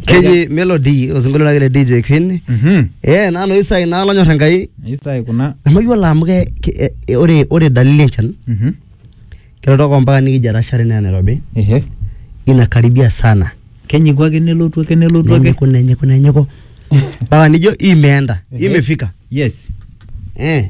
keji melody osinkolio lake le dj queen Mhm. eh nanu isai naa lonyor enkai Isai kuna. nemayiolo amu ke ke- eh, eh, ore ore dalili enchan Mhm. kelotoko mpaka nikijo etashare naa nairobi Ehe. inakaribia sana Kenyiku ake nelotu ake nelotu ake. nenyiku nenyiku nenyiku mpaka nijo imeenda Ehe. imefika Yes. eh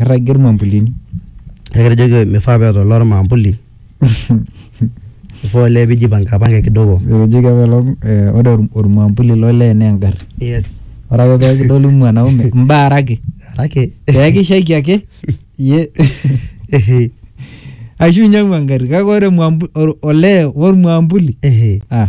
Irragie irmambulini. Kake etejoki mifaa paa eeta olee ormaambuli. Ifaa olee pijipankapanka kidogo. Etejoki apa ilo ore ormaambuli lo lee naa engarri. Yes. Ore ake pee kidoli mwanaume mbaaraki. Mbaaraki. Pee kishaiki ake iyie. Ashu inyiang'u engarri kake ore olee ormaambuli ah.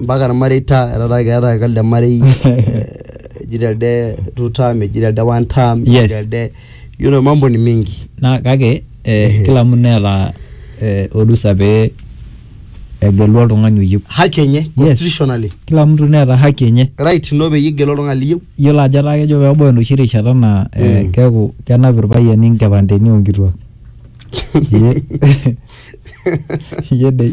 mpaka irmareita etaa keeta ake elde marei eh, eji telde two term eji telde one term eji Yes. telde yiolo mambo ni mingi naa kake eh, kila mtu neeta eh, orusa pee egelu oltung'ani oyieu haki enye constitutionally kila mtu neeta haki enye right ino peyie igelu oltung'ani liyieu yiolo ajo etaa kejo peebau enoshi rishata naa eh, Mm. keeku kenap irpayiani nkipandeni onkituak Ye- ye dei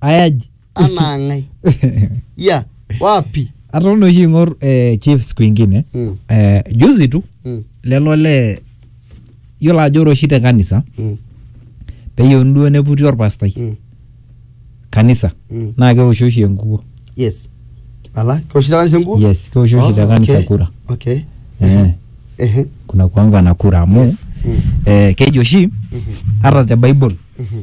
ayaji anaa ng'ae ya wapi atoon oshi ing'or eh, chiefs kwingine Mm. eh, juzi tu Mm, lelo le yiolo ajo ore oshi te kanisa mm, peyieuni duo neputi orpastai mm, kanisa mm. naa keoshi oshi enkukuo yes ala keoshi te kanisa enkuo yes keoshi oshi te Oh, kanisa okay. kura okay eh, Ehe. kuna kuanga na kura amu Yes. Mm. eh, keji oshi Mhm. hata te bible Mhm.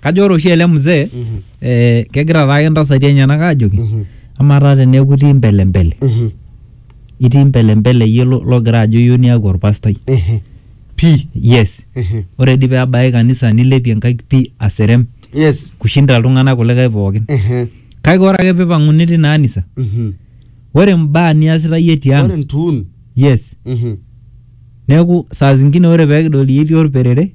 Kajo ore oshi ele mzee Mhm. eh, kegira taake ntasati enyenak ajoki Mhm. amaa taa teneeku itii mbelembele Mhm. itii mbelembele iyie lo- logira ajo iyieu niaku orpastai Mhm. Pii. yes Mhm. ore dii peebaya kanisa nilepie nkaik pii aserem Yes. kushinda iltung'anak kulikae pookin Mhm. kake ore ake pipang'uni tina anisa Mhm. ore mbaa niasita iyie Ore tiang ntuun. yes Mhm. neeku saa zingine ore pekidol iyie itii orperere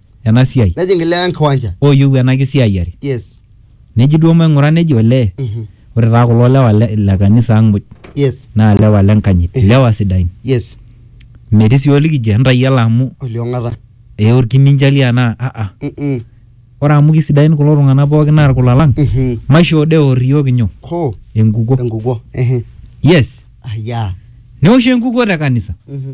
ena siai nejing ilewa enkiwanja ooyieu ena kisiayiare yes neji duo maing'ura neji olee Mhm. ore taa kulo lewa le, le kanisa ang muj yes naa lewa le nkanyit Eh. lewa sidain yes metii sii olikijo entayiala amu oliong'ata ee orkiminjali anaa aa Mm-mm. ore amu kisidain kulo tung'anak pookin naa irkula lang Mhm. maishoo dee eor iyiook inyo hoo enkukuo enkukuo Ehe. yes ayaa neoshi enkukuo te kanisa Mhm.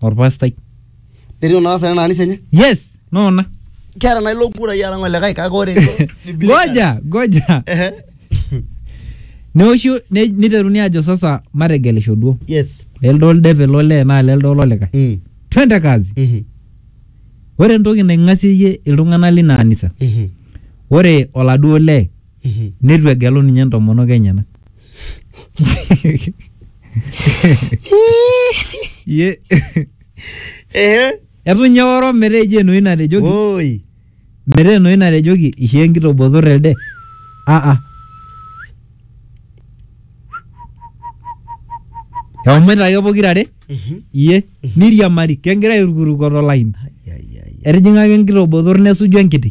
orpastai Netiu naa sasa ena anisa enye. yes noona Keeta naa ilo kurai alang olikae kake ore goja goja Ehe. neoshi ne- niteruni ajo sasa mategelisho duo Yes. lelde oldepe lolee naa lelde ololikae Mm. twende kazi Mhm. ore entoki naing'asieyie iltung'anak lina anisa Mhm. ore oladuo lee Mhm. neitu egelu ninye entomonok enyenak Ye- Ehe. etu ninye oro metaa eji enoshi natejoki Woi. metaa enoshi natejoki ishoo enkitobotor elde aa ehomoita ake pokirare Mhm. iye niriamari kegira airukuruko tolaini Ai, ai, ai. etijing'aka enkitobotor nesuju enkiti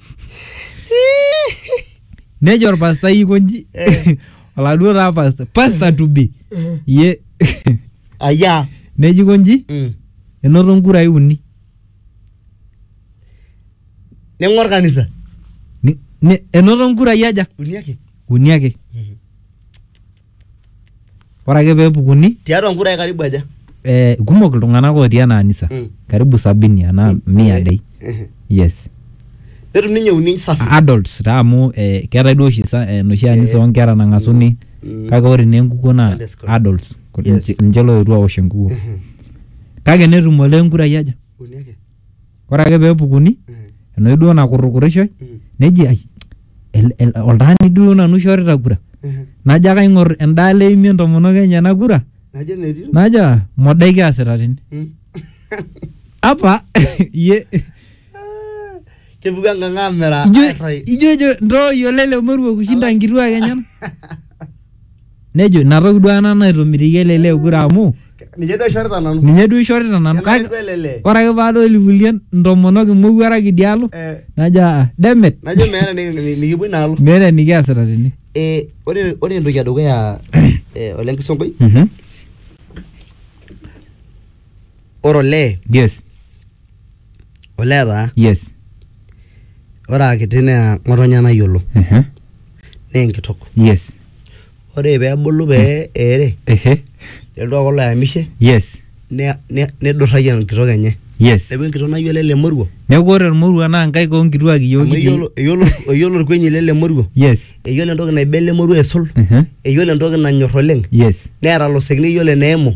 nejo orpastai aikonji Eh. oladuo taa pasta pasta to be ye aya neji konji Mm. enoto nkurai uni ning'or kanisa Ni- ni- enoto nkurai aja uni ake uni ake ore ake peepukuni tiatua nkurai karibu aja eh, kumok iltung'anak otii ena anisa Mm. karibu sabini anaa mia Eh, dei eh. yes netum ninye uni safi adults taa amu eh, keetae duo oshi sa- enoshi anisa Eh. oonkera nang'asuni Mm. kake ore naa enkukuo naa Sunday school. adults Ku- Yes. ninche- ninche looetuo awosh enkukuo kake netum olee nkurai aja uni ake ore ake pee epukuni enoshi duo nakurrukurishoi neji ai el- el- oltaani duo nanu oishorita kura najo ake aing'or endaalo eimie entomonok enyena kura najo metii najo "Ah, modai kiasita tene Mm. apa iye kepuku enkang amiraa ijo airrai ijo ijo ntooyio lele moruo kushinda nkituak enyen Nejo ina toki duo ena naitomitikio ele lee kura amu Ninye duo aishorita nanu. ninye duo ishorita nanu Kenare kake duo ele lee. ore ake paadol ilkulie ntomonok imowuarak idialo Eh, najo aa demet Najo meeta niki- nikipuo inaalo. meeta enikiasita tene. Eh, ore ore entoki edukuya eh, ole Nkisonkoi Mhm. ore olee yes olee taa yes ore akiti naa ng'otonye nayiolo ehe naa enkitok yes ore peebulu pee eere ehe nelotu aaku oloyamishe yes ne- ne- nidurrayie enkitok enye yes neeku enkitok nayiolo ele moruo neeku ore ormoruo naa nkaik onkituak iyiook amu kitii eyiolo eyiolo eyiolo orkuenyi lele moruo yes eyiolo entoki naiba ele moruo aisul ehe eyiolo entoki nanyorr oleng yes neeta ilosekin eyiolo eneimu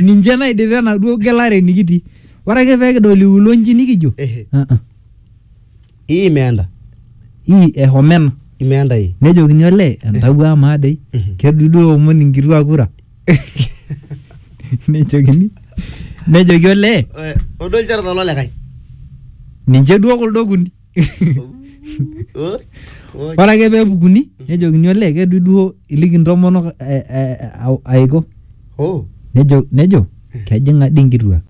ninche naidipa enaduo gelare nikitii ore ake pee kidol iulo nji nikijo Ehe. "Ah, ah, Hii imeenda. hii ehomena Imeenda hii. nejokini olee entawuo amaa dei Mhm. kedudu eomon inkituak kura nejokini nejoki olee Odo ilchoreta lolikae. ninche duo kuldo okuni Oh, oh. ore ake pee epukuni nejokini olee kedu duo iliki ntomonok eh, eh, au- aiko Oh, nejo nejo kejing'a dii nkituak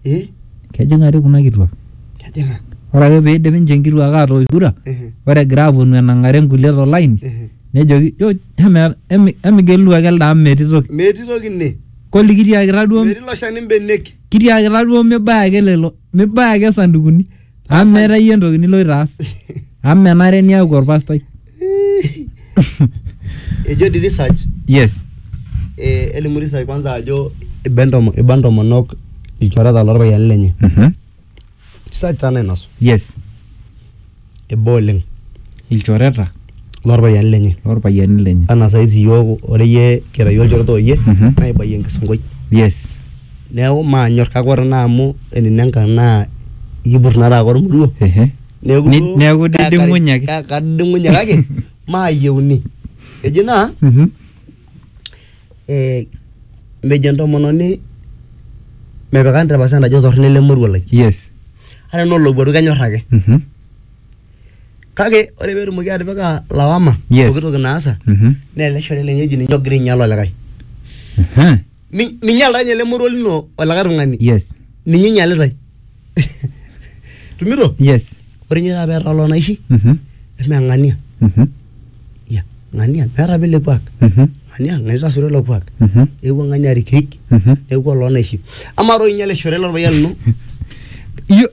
eh, kejing'a dii kuna kituak kejing'a. ore ake pee eidip ninche nkituak aatoosh kura Ehe, ore egira aaponu enang'are nkulie tolaini ehe. nejoki "Jo, eme- emi- emigelu ake elde amu metii toki Metii toki ine. koli kitiakita duo Metii ilo shani mbenek. kitiakita duo mibaya ake lelo mibaya ake sandukuni Amu meeta iyie entoki niloito aas. Amu menare niaku orpastai. Ejo di research Yes. eh, elimu research kwanza ajo iba entomo- iba ntomonok ilchoreta lorpayiani lenye Mhm. research taa nainosu Yes. iba oleng ilchoreta lorpayiani lenye lorpayiani lenye anaa saizi iyiook ore iyie kira iyie olchore oyie Mhm. naa ibayie enkisonkoi yes neeku maanyor kake ore naa amu enino engang naa ikipur naa taake ormoruo ehe neeku Ni- duo neeku kakari- diding'unye ake. ka- kadiding'unye kake maayieuni eji naa Mhm. eh, mejo entomononi mepikani te percent ajo torrono ele moruo lai yes ata enaa olowuaru kenyor ake Mhm. kake ore petumoki atipika lawama Yes. pooki toki naasa Mhm. naa ele shore lenye eji ninye ogira ainyal olikae Ehe. Mi- minyal taa ninye ele moruo lino olikae tung'ani yes ninye inyalitae tumito yes ore ninye taata peeta loo naishi Mhm. eme ng'ania Mhm. ya ng'ania meeta apa ele kuak Mhm. ng'ania ng'ania itasuro ilo kuak Mhm. eewuo ng'ania arikirik Mhm. neewuo oloo naishi amaa toi ninye ele shore lorpayian lino Iyo-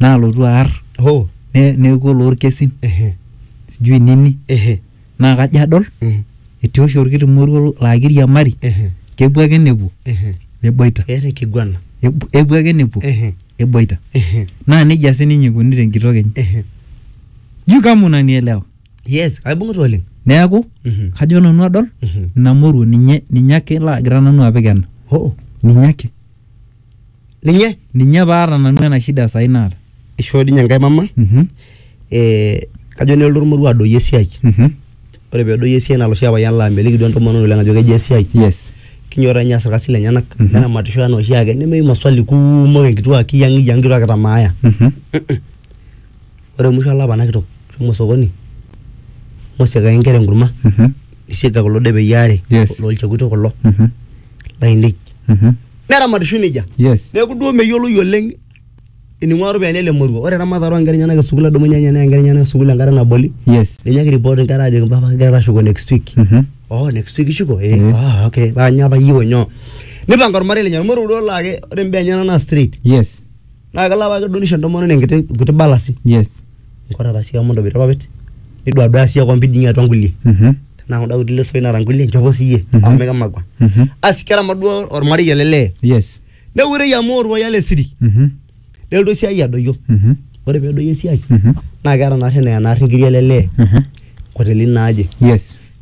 naalotu aar Hoo. ne- neeku oloorkesin Ehe. sijui nini Ehe. naa kajo adol Mm. etii oshi orkiti moruo laa kiriamari Ehe. kepuo ake nepuo Ehe. neboita Eeta enkiguana. Epu- epuo ake nepuo Ehe. neboita Ehe. naa nejia sininye eikuni tenkitok enye Ehe. sijui kama unanielewa Yes, aibung'ita oleng. neeku Mhm. kajo nanu adol Mhm. ina moruo ninye ninye ake laagira nanu apik ena Hoo. ninye ake ninye ninye paata nanu ena shida sai naata ishoo dinye enkae mama Mhm, eh, kajo nelotu ormoruo adoyio esiai mhm. ore pedoyio esiai naa loshi apayian laa meliki duo entomononi oleng ajo kejia esiai yes kinyoraa ninye aas irkasin lenyenak Mhm. neramatisho anaa oshiake nemeyieu maswali kumok enkituaa kiyang'iyang' kituaa kitamaaya Mhm. Ore musho olapa ena kitok shomo osokoni mosiakaki inkera enkurma Mhm. nisiaga kulo depei aare Yes. loolchekuti kulo Mhm. lainei Mhm. neramatishoyu nejia Yes. neeku duo meyioloi oleng ening'ua iropiyiani ele moruo ore eramatare oonkera enyenak esukuul edumunye ninye neya inkera enyenak sukuul enkata naboli Yes. ninye ake report inkera ajoki mpapa kigira taa ashuko next week Mhm. oh next week ishuko eh Mhm. ah okay paa nyoo apa iyieu nyoo nipanga ormarei lenye ormoruo duo laa ke- ore imbaa enyenak naa straight Yes. naa kelo apake duo nisho entomononi enkiti nkuti balasi yes nkorara sii amu intobira irpapit niduaduaya sii akwampi dii ninye atua nkulie Mhm. tenaa kunda kuti lesoi naata nkulie nchopo siiyie Mhm. amu mikimakua Mhm. asi keramat duo ormarei ele lee yes neurei amu orpayian le siri Mhm. nelotu esiai adoyio Mhm. ore peedoyio esiai Mhm. naa keeta naarri eneya naarri nkiri ele lee Mhm. nkotelini naaje yes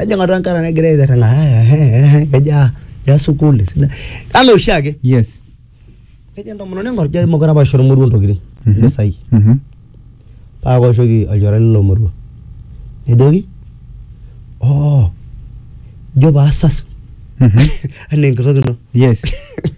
ejing atua enkare negira aitirring'a kejaa ya sukuul esidai anaa oshiake yes nejo entomononi ing'or jai mokure apa aisho ormoruo intokitin impisai Mhm. paa kaoshoki olchore lilo moruo nejoki oo ijo paasasu Mhm. anaa enkitok ino yes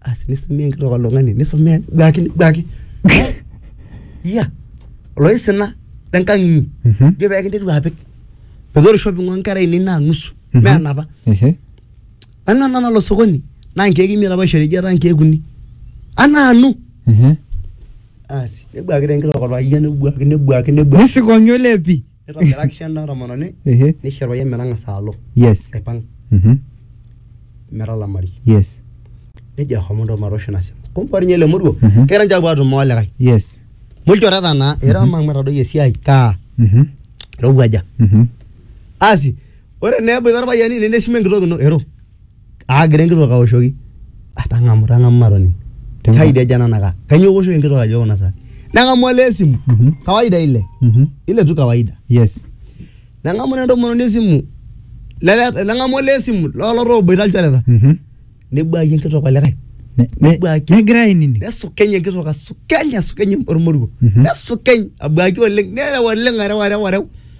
asi nisumie enkitok oltung'ani nisumie duaki duaki iya oloisina lenkang inyi Mhm. jo pekinteru apik metaa ore shopping onkera ainei naa nusu Mhm. mee enapa Ehe. nanu ena nalo sokoni naa nkeek imiet apa aishori ejo etaa nkeek uni anaanu Ehe. asi nebuakita enkitok orpayian nebuaki nebuaki nebuaki Nisikong'i olepi. nitobiraki ena tomononi ehe nisho orpayian metang'asa alo yes aipang mhm metalamari yes nejo ahomo ntoo matoosho ina simu kumbe ore ninye ele moruo Mhm. kegira ninche apuo atumo olikae yes mulchoreta naa era amu matadoyio esiai kaa mhm irowuaja mhm asi ore naa eboita irpayiani nene esimu enkitok ino ero aagira enkitok aoshoki "Ah, tang'amu tang'amu matoning Tang'amu. kaidi aja ena naka kainyoo iwoshoki enkitok ajo kuna saa neng'amu olee esimu Mhm. kawaida ile Mhm. ile tu kawaida yes neng'amu naa entomononi esimu lele- neng'amu olee esimu lolo tooboita ilchoreta Mhm. nebuaki enkitok olikae Ne- ne- Nebuaki. negira ainining nesukeny enkitok asukeny asukeny ormoruo Mhm. nesukeny abuaki oleng nereu oleng areu areu areu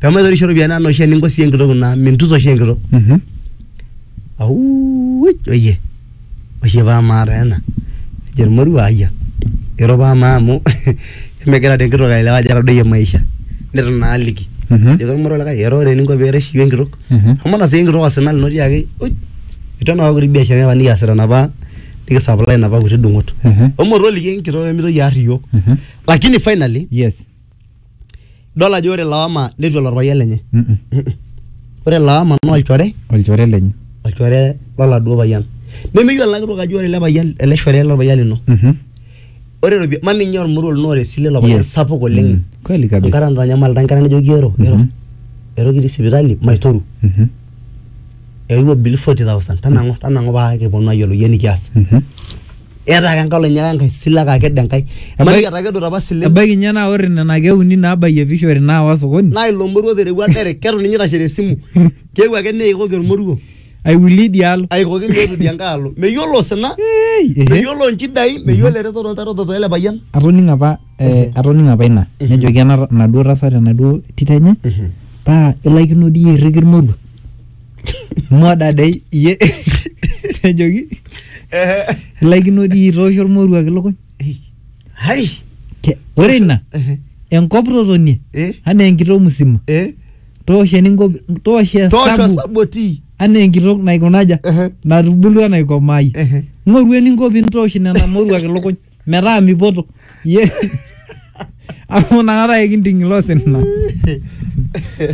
pee maitorisho iropiyiani anaa oshi eninko sii enkitok ino amu mintusa oshi enkitok Mhm. auuj oyie oshi paa maata ena nejo ormoruo ayia ero paa maa amu emegira taa enkitok aelewa ajo etadoyie maisha neton naa aliki Mhm. ejoki ormoruo likae ero ore eninko pee irish iyie enkitok Mhm. amu ina sii enkitok osina lino tiaki uj itu enapa kuti biasharani apa nikiasita napa nikisaplai napa kuti dung'ot Mhm. omoruo oliki enkitok pee mitoki aar iyiook Mhm. lakini finally Yes. idol ajo ore lawama netu elo orpayian lenye Mm-mm. Mm-mm. ore lawama naa olchore olchore lenye olchore loladuo payian nemeyiolo ena kitok ajo ore ele payian ele shore lorpayian lino Mhm. ore ropi ma ninye ormoruo lino ore esile ilo payian Yes. sapuk oleng Mm. kweli kabisa enkata natanyamalita enkata najoki ero ero Mhm. ero kitii sipitali maitoru Mhm. eewuo bill forty thousand tanang'u tanang'u paa kiponu ayiolou iyie enikias eeta ake enkae olonyo ake enkae sile ake akedo enkae ebaiki etakedote apa isilen ebaiki ninye naa ore nena keek uni naabayie vishori naawa sokoni naa ilo moruo oterewua direct ketu ninye itashe tesimu keewuo ake neikoki ormoruo aiwulie idia alo aikoki meetu idia nkae alo meyiolo osina Ei, ehe. meyiolo inchidai meyiolo eretoto ontaretoto ele payian atoning'o apa eh, atoning'o apa ina nejoki ena enaduo tasat enaduo tito enye paa ilaikino dii iyie airriki irmoruo moda dei iyie nejoki ilaikino dii iyie itoosho irmoruak ilukuny hai Ke- ore ina enkop totonie Eh. anaa enkitok musima eh toosho eninko toosho toosho esabu saboti anaa enkitok naikunaja Ehe. natubulua naikomaayie Ehe. ng'oru eninko pintoosh nena moruak ilukuny metaa mipoto iyie amu inakata ekinting ilo sina